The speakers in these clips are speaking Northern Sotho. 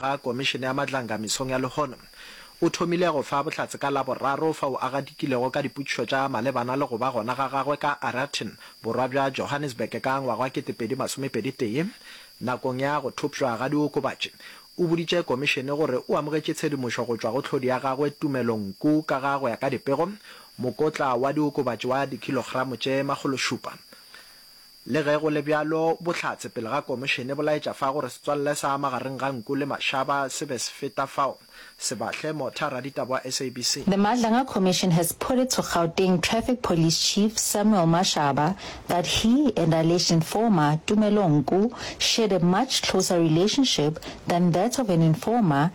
ga Komišene ya Matlanga mesong ya lehono o thomile go fa bohlatse ka Laboraro fao a gadikilego ka dipotšišo tša malebana le go ba gona ga gagwe ka Arerton, borwa bja Johannesburg ka ngwaga wa 2021. Nakong ya go thopšwa ga diokobatši, o boditše Komišene gore o amogetše tshedimošo go tšwa go tlhodi ya gagwe Tumelo Nku ka ga go ya ka dipego, mokotla wa diokobatši wa dikilogramo tše makgološupa. Le ge go le bjalo, bohlatse pele ga komišene bo laetša fa gore setswalle sa magareng ga nku le mašaba se be se feta fao. Sebahle, Motha, raditaba wa SABC. The Madlanga Commission has put it to Gauteng Traffic Police Chief Samuel Mashaba that he and alleged informer Tumelo Nku shared a much closer relationship than that of an informer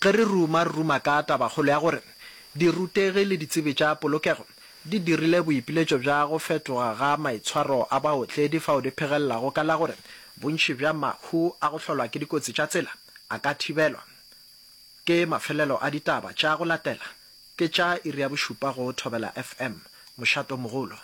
Ge re ruma, re ruma ka tabakgolo ya gore dirutegi le ditsebi tša polokego di dirile boipiletšo bja go fetoga ga maitshwaro a baotledi fao di phegelelago ka la gore bontši bja mahu a go hlolwa ke dikotsi tša tsela a ka thibelwa. Ke mafelelo a ditaba tša go latela, ke tša iri ya bošupa go Thobela FM, Mošato Mogolo.